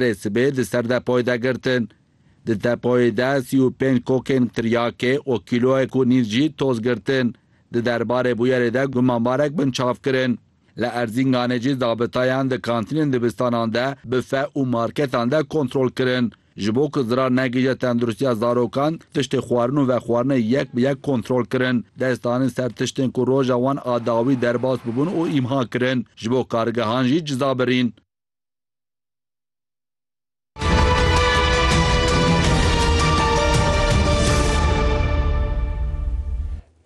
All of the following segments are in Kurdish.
Rê sibê di ser depoyê de girtin. Di depoyê de sî û pênc kokên tiryakê û kîloyek û nîv jî toz girtin. Di derbarê bûyerê de gumanbarek binçav kirin. Li Erzînganê jî zabitayan di kantînên dibistanan de, bife û marketan de kontrol kirin. Ji bo ku zirar negihîje tendirustiya zarokan, tiştê xwarin û vexwarinê yek bi yek kontrol kirin. Dest danin ser tiştên ku roja wan a dawî derbas bûbûn û îmha kirin. Ji bo kargehan jî ciza birîn.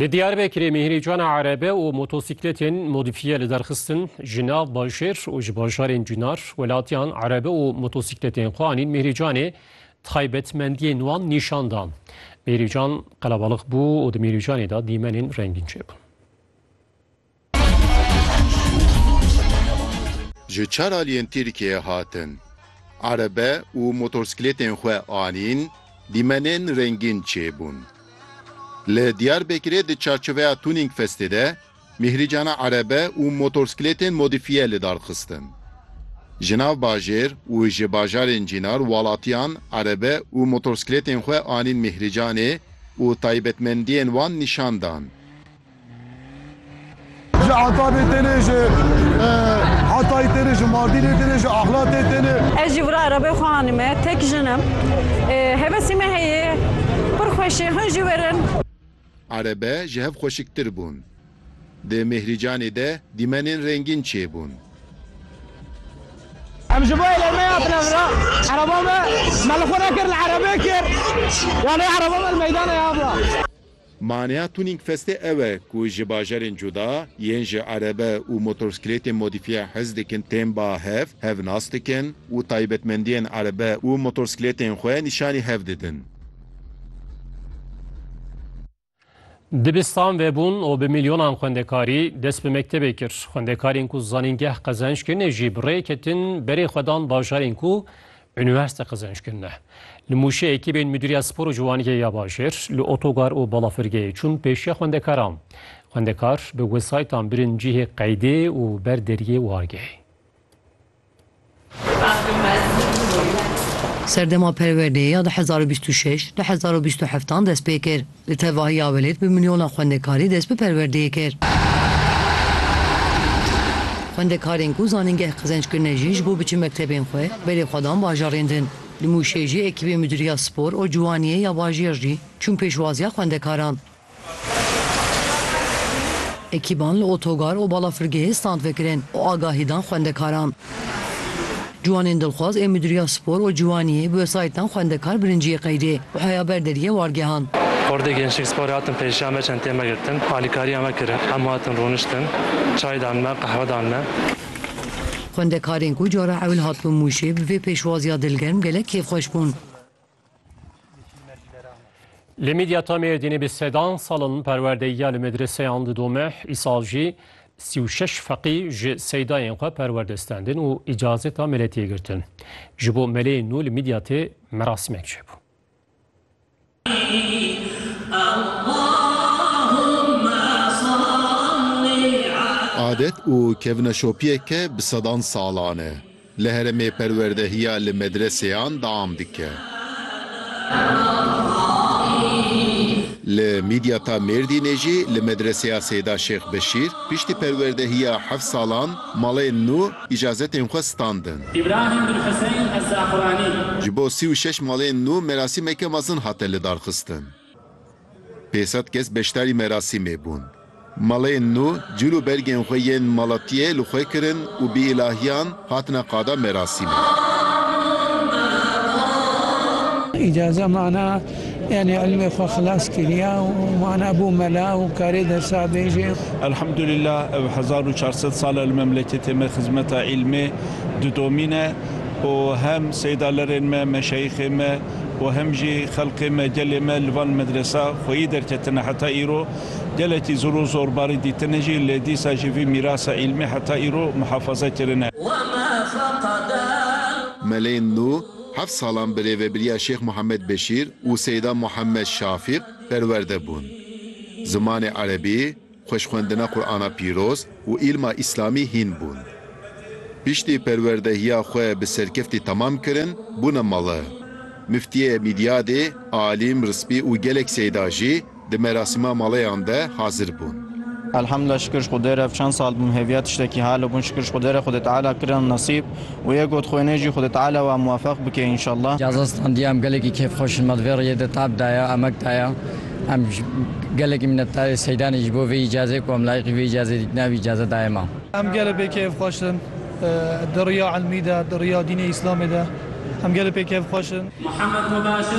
Li Diyarbekirê mîhrîcana erebe û motosîkletên modîfiye li derxistin ji nav bajêr û ji bajarên cûnar welatiyan erebe û motosîkletên xwe anîn mîhrîcanê taybetmendiyên wan nîşan da. Mîhrîcan qelebalix bû û di mîhrîcanê de dîmenên rengîn çêbûn. Ji çar aliyên Tirkiyeyê hatin. Erebe û motorsklêtên xwe anîn, dîmenên rengîn çêbûn. Li Diyarbekirê di çarçoveya Tuning Festê de mîhrîcana erebe û motorsklêtên modîfiye li dar xistin. Ji nav bajêr û ji bajarên cînar walatiyan erebe û motorsklêtên xwe anîn mîhrîcanê û taybetmendiyên wan nîşan dan. Ji Atabê tenê ji Hatayê tenê ji Mardînê tenê ji Ahlatê tenê. Ez jî vira Erebê xwe anîme tek jin im. Hevesî me heye pir xweş e hûn jî werin. Erebe ji hev xweşiktir bûn. Di Mêhrîcanê de dîmenên rengîn çêbûn. Em ji bo Erebê hatine vira. Ereba me me li xwe nekir li Erebê kir. Yanê ereba me li meydanê ya vira. Maneya tuning festê ew e ku ji bajarên cuda yên ji erebe û motorsklêtên modîfiye hez dikin tên ba hev, hev nas dikin û taybetmendiyên erebe û motorsklêtên xwe nîşanî hev didin. Dibistan vebûn û bi milyonan xwendekarî dest bi mektebê kir. Xwendekarên ku zanîngeh qezenc kirine jî bi rê ketin berê xwe dan bajarên ku Unîversîte Qezençkîn ne. Li Mûşê ekîbên Mudîriya Spor û Ciwaniyê ya Bajêr li otogar û balafirgehê çûn pêşiya xwendekaran. Xwendekar bi wesayîtan birin cihê qeydê û ber deriyê war gehê. Serdema perwerdeyê ya du hezar û bîst û şeş, du hezar û bîst û heftan dest pê kir. Li tevahiya welêt bi milyona xwendekarî dest bi perwerdeyê kir. Xwendekarên ku zanîngeh qezenc kirine jî ji bo biçin mektebên xwe, berê xwe dan bajarên din. Li Mûşê jî ekîbê Midûriya Spor û Ciwaniyê ya bajêr jî çûn pêşwaziya xwendekaran. Ekîban li otogar û balafirgehê stand vekirin û agahî dan xwendekaran. Ciwanên dilxwaz ê Mudîriya Spor û Ciwaniyê bi wesayîtan xwendekar birinciyê qeydê û heya ber deriyê war gihand. Hordê Gençlik Sporê hatin pêşiya me, çenteyên me girtin, alîkariya me kirin, hemû hatin rûniştin, çay dan me, qehwe dan me. Xwendekarên ku cara ewil hatibûn Mûşê bi vê pêşwaziya dilgerm gelek kêfxweş bûn. Li Midyata Mêrdînê bi sedan salin perwerdeyiya li medreseyan didome, îsal jî sî û şeş feqî ji seydayên xwe perwerde standin û îcazeta meletiyê girtin. Ji bo meleyên nû li Midyatê merasîmek çêbû. Adet û kevneşopiyeke bi sedan salan e. Li herêmê perwerdehiya li medreseyan deam dike. Li Midyata Mêrdînê jî li medreseya Seyda Şêx Beşîr piştî perwerdehiya heft salan malên nû îcazetên xwe standin. Îbrahîm bin Huseyn Ez-Zaquranî. Ji bo sî û şeş malên nû merasîmeke mezin hate lidarxistin. Pê sed kes beşdarî merasîmê bûn. Maleyên nû cil û bergên xwe yên malatiyê li xwe kirin û bi îlahiyan hatine qada merasîmê. Îcaze mana yanî ilmê xwe xilas kiriya û mana bû mela û karê dersa bêje. Elhamdulîllah ev hezar û çar sed sal e li memleketê me xizmeta îlmê didomîne û hem seydalerên me, meşeyixên me, û hem jî xelkê me, gelê me li van medresa xweyî derketine heta îro gelekî zor û zorbarî dîtine jî lê dîsa jî vî mîrasa îlmî heta îro muhafaza kirine. Melên nû heft salan bi rêvebiriya Şêx Muhammed Beşîr û Seyda Muhammed Şafîq perwerde bûn. Zimanê Erebî, Xweşxwendina Qur'ana Pîroz û îlma Îslamî hîn bûn. Piştî perwerdehiya xwe bi serkeftî temam kirin, bûne mala. Miftiyê Mîdyadê, Alîm, Rispî û gelek seyda jî di merasîma maleyan de hazir bûn. Elhamdulillah şikir ji Xwedê re ev çend sal bûm hêviya tiştekî hale bûn şikir ji Xwedê re Xwedê Teala kirin nesîb û yê got xwênê jî Xwedê Teala wan muwefeq bike înşallah. Caza standî em gelekî kêfxweş in me di vê rêyê de tab daye, emek daye. Em gelekî minnetdar ê Seydanê ji bo vê îcazê ku em layîqî vê îcazê dîtin ev îcaze daye me. Em gelê pê keyfxweş in di riya ilmî de, di riya dînê Îslamê de em gelê pê keyfxweş in. Muhammed Mubashir.